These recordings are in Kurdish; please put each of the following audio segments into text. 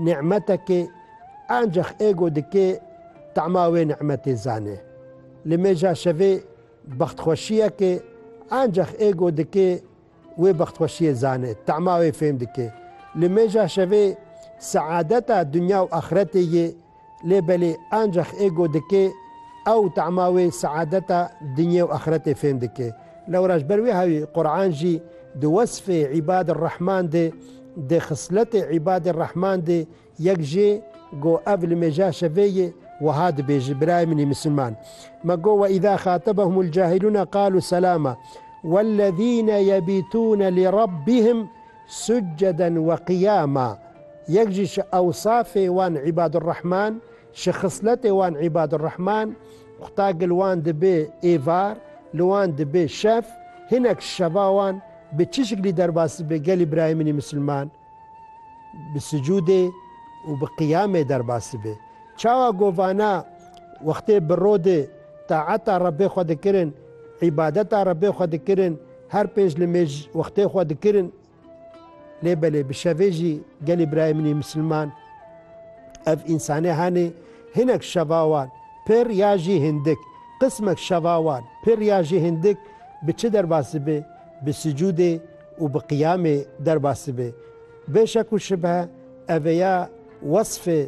Nîmetekê ancex êgo dikê tema wê nîmetê zanê. Li mêja şevê bextxweşiyekê ancex êgo dikê wê bextxweşiyê zanê, tema wê fêm dikê. Li mêja şevê seadeta dinya û axretê yê. Lê belê ancax ê go dikê, ew tema wê seadeta dinyê û axiretê fêm dike. Lewra ji ber wê hawî Quran jî di wesfê îbadê rehman de, di xisletê îbadê rehman de yek jê go ev li mêja şevê ye wiha dibêje, Birayê min ê misilman me go we îza xatebehumul cahilûne qalû selama wellezîne yebîtûne li Rabbihim Suceden we qiyama, yek jî ji ewsafê wan Îbadurrehman, ji xisletê wan Îbadurrehman, qutagil wan dibe êvar, li wan dibe şev, hinek ji şeva wan bi çi şiklî derbas dibe gelî birayê min î misilman? Bi sucudê û bi qiyamê derbas dibe. Çawa ku vana wextê bi ro de taeta Rebbê xwe dikirin, îbadeta Rebbê xwe dikirin, Her pêş li mêj wextê xwe dikirin lê belê bi şevê jî gelê birayê min ê misilman ev însanê henê hinek şeva wan pir ya jî hindik qismek şeva wan pir ya jî hindik bi çi derbas dibe bi sicûdê û bi qiyamê derbas dibe bê şek û şibhe ev ê ya wesfê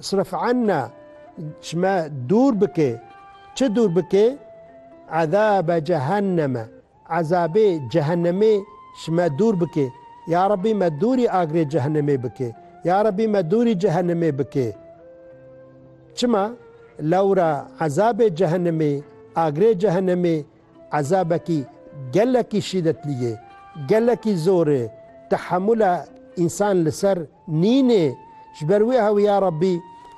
Sirf anna ji me dûr bike. Çi dûr bike? Ezabe cehenneme. Ezabê cehennemê ji me dûr bike. Ya Rabbî me dûrî agirê cehennemê bike. Ya Rabbî me dûrî cehennemê bike. Çima? Lewra ezabê cehennemê, agirê cehennemê ezabekî gelekî şîdetlî ye. Gelekî zor e. Tehemûla însan li ser Nînê, ji ber wê hewî ya Rabbî,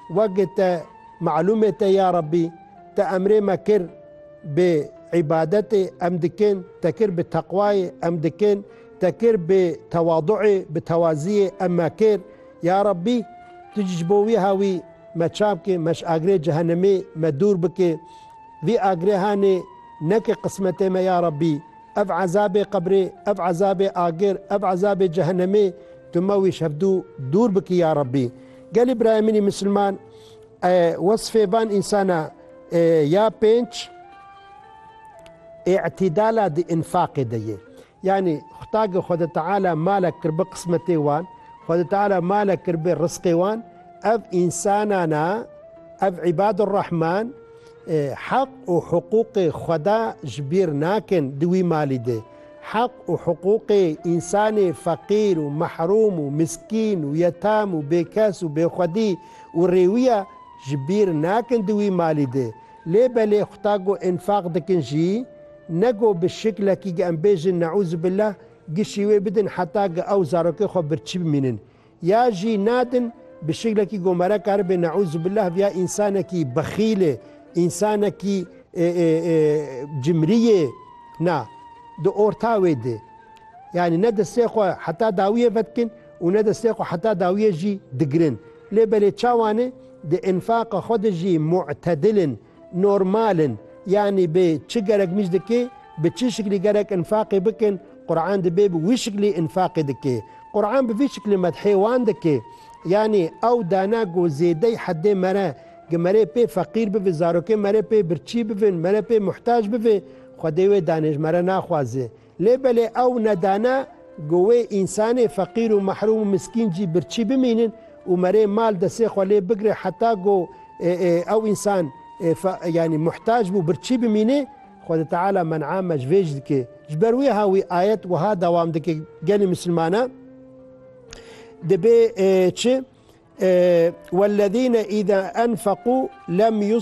weke te malûmê te ya Rabbî, te emrê me kir bi îbadetê em dikin, te kir bi teqwayê em dikin, te kir bi tewaduê, bi tewaziyê em me kir, ya Rabbî tu jî ji bo wî hewî me çap kê, me ji agrê cehenemê me dûr bikê, vî agrehanê neke qismetê me ya Rabbî. Ev ezabê qebrê, ev ezabê agir, ev ezabê cehenemê tu me wî şevdû dûr bikî ya Rabbî. Gelê birayê min ê misilman wesfê van însana ya pênc îtîdala di înfaqê de yê. Yanî Xwedagê Xwede Teala malek kir bi qismetê wan, Xwede Teala malek kir bi risqê wan, ev însanana ev îbadurrahman Heq û hiqûqê xweda ji bîr nakin di wî malî de. Heq û hiqûqê însanê feqîr û mehrûm û miskîn û yetem û bêkes û bêxwedî û rêwiya ji bîr nakin di wî malî de. Lê belê xwta ku înfaq dikin jî ne ku bi şiklekî em bêjin neûzubîllah gişî wê bidin heta ku ew zarokê xwe birçî bimînin. Ya jî nadin bi şiklekî gomara karibe neûzubillah viya însanekî bexîlê, însanekî cimrî yê na di orta wê de. Yanî ne destê xwe heta dawiyê vedikin û ne destê xwe heta dawiyê jî digirin. Lê belê çawan e di înfaqa xwe de jî mu'tedil in. Normal in. Yanî bê çi gerek mîz dikê, bi çi şiklî gerek înfaqê bikin, Quran dibê bi wî şiklî înfaqê dikê. Quran bi vî şiklî medhê wan dikê. Yanî ew dana ku zêdey hedê mere ki mere pê feqîr bivê, zarokên mere pê birçî bivin, mere pê muhtac bivê, Xwedê wê danê ji mere naxwaze. Lê belê ew ne dane ku wê însanê feqîr û mehrûm û miskîn jî birçî bimînin û merê mal desê xwe lê bigre heta ku ew însan yanî muhtac bû birçî bimînê. Xwedê Teala men'a me ji vê jî dike. Ji ber wêha wî ayet wiha dewam dike gelê misilmana dibê çi, Wellezîne îza enfeqû lem